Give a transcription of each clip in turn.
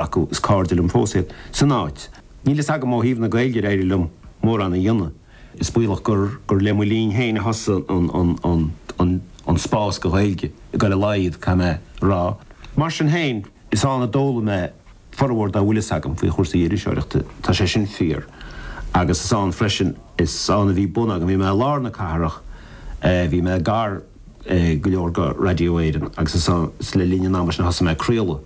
acu. Is cáirde liom fós iad. San áit. Níl fhios agam ó thaobh na Gaeilge de ar éirigh liom mórán a dhéanamh. Is baolach gur gur le mo linn féin a thosaigh an an an an an spás don Ghaeilge ag dul i laghad caithfidh mé rá. Mar sin féin, is ann a d'fhoghlaim mé formhór dá bhfuil fhios agam faoi chúrsaí iriseoireachta, tá sé sin fíor. Agus is ann freisin, is ann a bhí bun agam, bhí mé i lár na cathrach, bhí mé gar go leor go Raidió Éireann agus is ann, is le linn an ama sin a thosaigh mé ag craoladh.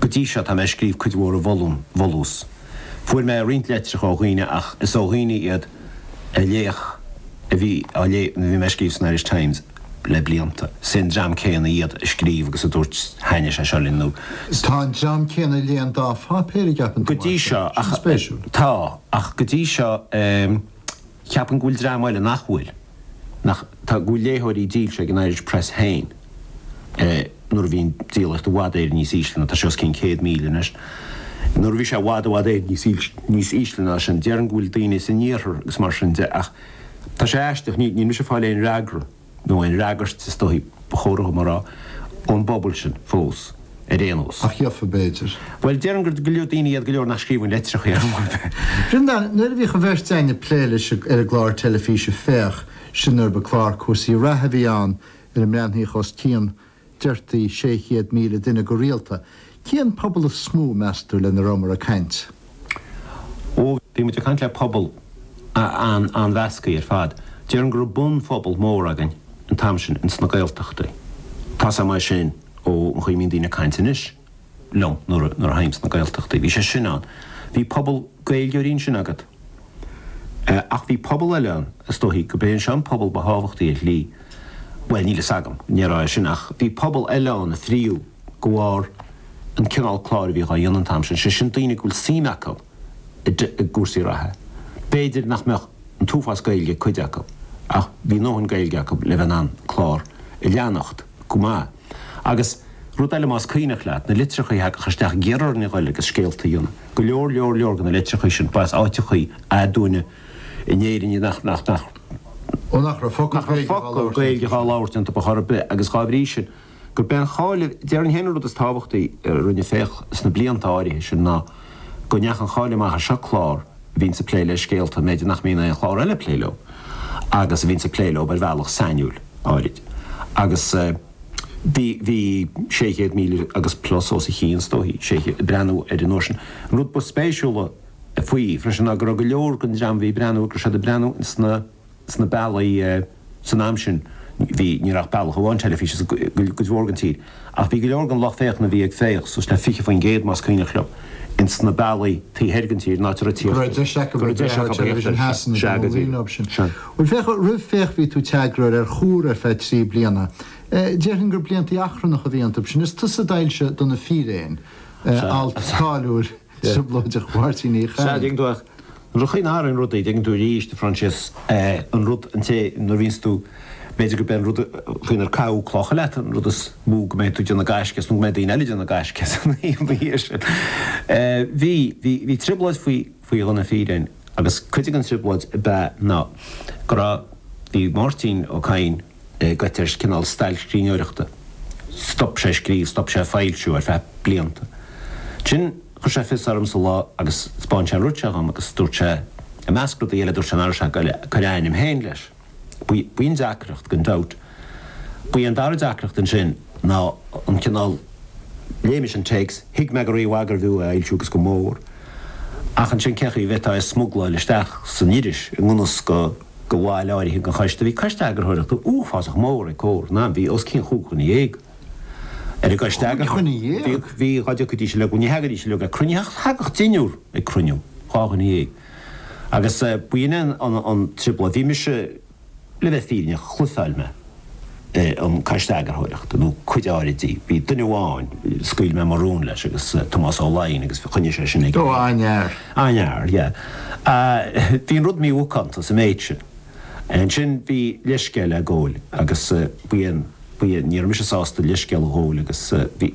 Go dtí seo tá mé ag scríobh cuid mhór a bhfolúin, bhfolús. Fuair mé roinnt leitreacha ó dhaoine ach is ó dhaoine iad a léadh, a bhí á léamh nuair a bhí mé ag scríobh san Irish Times le blianta. Is é an dream céanna iad a scríobh agus a dúirt thaitnigh sé seo linn nó. Tá an dream céanna léann dhá pháipéar ag aip an Go dtí seo ach. Sin spéisiúil. Tá, ach go dtí seo eh, ceapaim go bhfuil dream eile nach bhfuil. Ach tá a gcuid léitheoirí dílse ag an Irish Press féin nuair a bhíonn díolaíocht i bhfad Éireann níos ísle ná, tá sé os cionn 100,000 anois, nuair a bhí sé i bhfad i bhfad Éireann níos ísle níos ísle ná sin. Déarfainn go bhfuil daoine san Iarthar agus mar sin de ach tá sé aisteach, níl mise ag fáil aon fhreagra nó aon fhreagairt is dóigh, ba chóir dhom a rá, ón bpobal sin fós. ar aon nós. Ach gheobhfar b'fhéidir. Bhuel, déarfainn gur go leor daoine iad go leor nach scríobhann litreacha ar chor ar bith. Breandán, nuair a bhíodh an bheirt a'inn ag plé leis ar an gclár teilifíse Féach, sin nuair ba chlár cúrsaí reatha a bhí ann ar a mbreathnaíodh os cionn, deirtí, 600,000 duine go rialta, cén pobal is mó, meas tú, lena rabhamar ag caint? Ó bhí muid ag caint le pobal an-mheasctha ar fad, déarfainn go raibh bunphobal mór againn an t-am sin ins na Gaeltachtaí. Tá fhios agam é sin ón gcaoi a mbíonn daoine ag caint anois liom nuair a théim sna Gaeltachtaí. Bhí sé sin ann. Bhí pobal Gaeilgeoirí ansin agat. Ach bhí pobal eile ann, is dóichí gurb é seo an pobal ba thábhachtaí ar shlí, bhuel, níl fhios agam, ní déarfainn é sin ach bhí pobal eile ann a frítheadh. de bharr an chineál cláir a bhíodh á dhéanamh an t-am sin, sé sin daoine go bhfuil suim acu i gcúrsaí reatha. B'fhéidir nach mbeadh an t-uafás Gaeilge ag cuid acu ach bhí a ndóthain Gaeilge acu le bheith in ann an clár a leanacht go maith. Agus rud eile más cuimhneach leat, na litreachaí a thagadh isteach ag iarraidh orainn a ghoil agus scéalta a dhéanamh, go leor leor leor de na litreachaí sin, ba as áiteachaí aduaine in Éirinn iad nach, nach, nach, nach raibh focal Gaeilge dhá labhairt iontu a' chor ar bith agus dhá bhrí sin, Gurb é an cháil, déarfainn féin an rud is tábhachtaí a rinne Féach sna blianta áirithe sin ná go ndeachaigh an cháil amach, seo clár a bhíonns ag plé le scéalta b'fhéidir nach mbíonn aon chlár eile ag plé leo agus a bhíonns ag plé leo ar bhealach sainiúil, áirid. Agus bhí, bhí 600,000 agus plus os a chionn is dóichí, 600, ag breathnú air an uair sin. An rud ba spéisiúla faoi freisin ná go raibh go leor den dream a bhí ag breathnú, go raibh siad ag breathnú ins na, sna bealaí san am sin bhí, ní raibh ach bealach amháin teilifíse sa, cuid mhór den tír, ach bhí go leor den lucht féachana a bhí ag Féach, suas le 20%, más cuimhneach liom, in sna bealaí taobh thoir den tír, in áit a raibh go raibh deis acu bheith ag féach ar Television Shasana don ón línáb sin. Bhuel féach, roimh Féach bhí tú i d'eagarthóir ar Chomhar ar feadh trí bliana. Déarfainn gur blianta achrannacha a bhí iontu sin. Is tusa d'fhoilsigh Do na Fíréin, alt cáiliúil. trioblóideach Mháirtín Uí Chadhain. Sea, dtuigeann tú ach nuair a chaoineadh tharainn rudaí, dtuigeann tú arís, a Phroinsias, an rud, an té, nuair a bhíonns tú, b'fhéidir go beidh an rud faoinar caitheadh clocha leat, an rud is mó go mbeidh tú ag déanamh gaisce as nó go mbeidh daoine eile ag déanamh gaisce as ina dhiaidh sin. Bhí, bhí, bhí trioblóid faoi, faoi Do na Fíréin agus cuid den trioblóid ab ea ná go raibh, bhí Máirtín Ó Cadhain, goite ar cineál stailc scríbhneoireachta. Stop sé scríobh, stop sé foilsiú ar feadh blianta. Ansin chuir sé fios ormsa lá agus 'spáin sé an rud seo dhom agus dúirt sé, i measc rudaí eile dúirt sé ná raibh sé ag cur a ainm féin leis. B'in deacracht gan dabht. Ba í an dara deacracht ansin ná an cineál, léigh mise an téacs, thuig mé go rímhaith gurbh fhiú é a fhoilsiú agus go mór, ach ansin cé chaoi a bhféadfá é a smugláil isteach san iris i ngan fhios do. do bhaill áirithe den Choiste, bhí Coiste Eagarthóireachta uafásach mór ag Comhar, ná bhí, os cionn chúig dhuine dhéag. Ar an gCoiste Eagarthóireachta. Chúig dhuine dhéag? Bhí, dhá dtiocfaidís uilig, ní thagaidís uilig ag cruinnithe ach, thagadh deichniúr ag cruinniú, dhá dhuine dhéag. Agus b'in é an trioblóid, bhí mise, le bheith fírinneach, chrosáil mé. an Coiste Eagarthóireachta, nó cuid áirid di. Bhí duine amháin, scaoil mé mo rún leis, agus Tomás Ó Laighin, agus choinnigh sé sin aige. Ó, aniar. Aniar, yeah. Bhí an rud mímhacánta sa méid sin. Ansin bhí leithscéal le gabháil, agus bhí, bhí, ní raibh mise sásta leithscéal a ghabháil agus bhí, bhí.